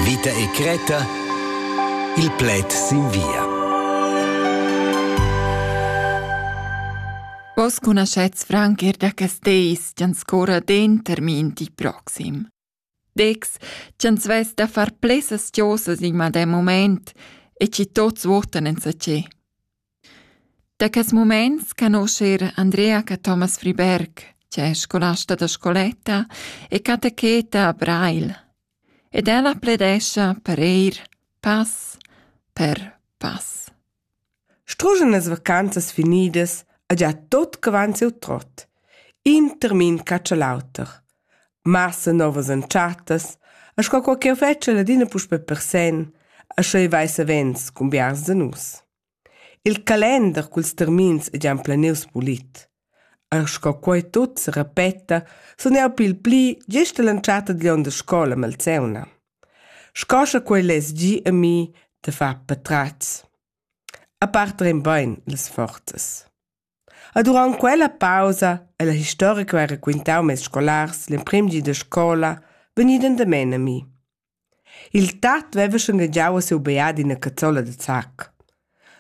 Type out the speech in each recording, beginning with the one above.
Vita e Creta Il pled sin via. Vos cunoschets franc er da quest deis ch'an scorra termin di proxim. Dex, ch'ans vess da far plessas chiosas in madem moment e chi tots votan en sa ce. Da quest mumaint canosce eir Andrea Cathomas Friberg, che es scolasta da scoletta e catecheta a Breil, ed ella pledescha per eir pass per pass. Struschen las vacanzas finidas ha già tot quant siu trot. In termin catscha l'auter. Massa novas entschattas, a sco qualche fetsch l'adina puspe per sen, a scheu vai savens cun biars da nus. Il calender culs termins ei gia emplenius pulit. Er sco quei tut serepeta, sun jeu pil pli gest all'entschatta digl onn da scola malseuna. Sco sche quei less gi a mi da far patratgs. A part rein bein las forzas. E durant quella pausa è la historia che ho raquintau mes scolars l'emprim di da scola vegnida endamen a mi. Il tat veva schanegiau a siu beat ina cazzola da zac.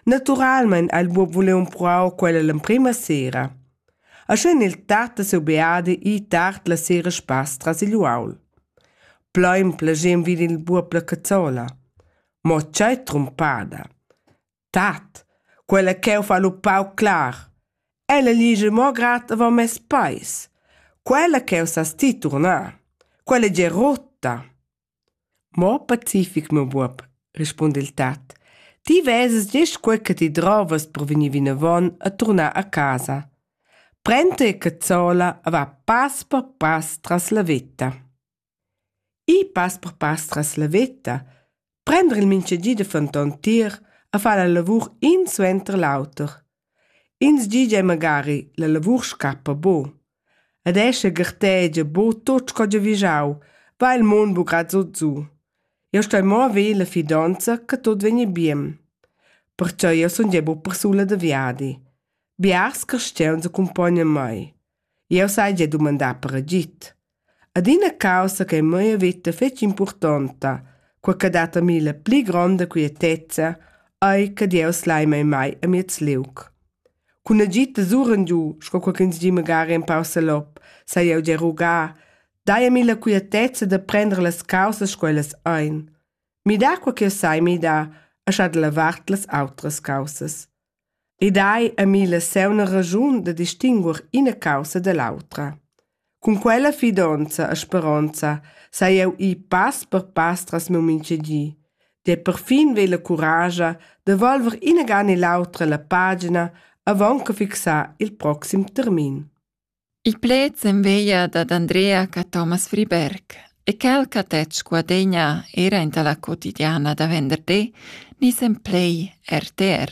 Naturalmein ha il buob vuliu empruar quella l'emprima sera. E sch'en il tat da siu beat ì tard la sera spass tras igl uaul. Plein plagem vid il buob la cazzola. Mo tgei trumpada! Tat, quella ch'eu fa lu pauc clar. Ella ligia mo grad avon mes peis. Quella ch'eu sas ti turnar. Quella è già rotta. Mo pacific, meu buob, rispunda il tat. Ti veses gest quei che ti drovas per vegnir vinavon a turnar a casa. Prend te cazzola e va pass per pass tras la vetta. Ir pass per pass tras la veta, prender il mintgagi da fenton tier e far la lavur in suenter l'auter. Ins di gia magari la lavur scappa bo. Ed escha gartegia bo tot sco giavischau, va il mund bugrad zo giu. Eu stoi mo haver la fidonza che tot vegni bien. Perciò eu sun gia buca persula da viadi. Biars carstgauns accompognan mei. Jeu sai gia dumandar per agid. Adina caussa che mia veta fetg impurtonta, quei che dat a mi la pli gronda quietezza, ei che Dieus lai mei mai a miez liug. Cun agid da suren giu, sco co ch'ins di magari empau salop, sai jeu gia rugar, dai a mi la quietezza da prender las caussas sco ellas ein. Midar quai che sai midar e scha da la vart las autras caussas. I dai a mi la seuna ragiun da distinguer ina caussa da l'autra. Cun quella fidonza e speronza sai eu ir pass per pass tras meu mintgedi. De perfin ve la curagia da volver inagan e l'autra la pagina avant che fixar il proxim termin. Il pled s'enveglia dad Andrea ch'a Thomas Friberg e quel ch'ha tetg Guadegna era enta la quotidiana da venderdi ni sem plai RTR.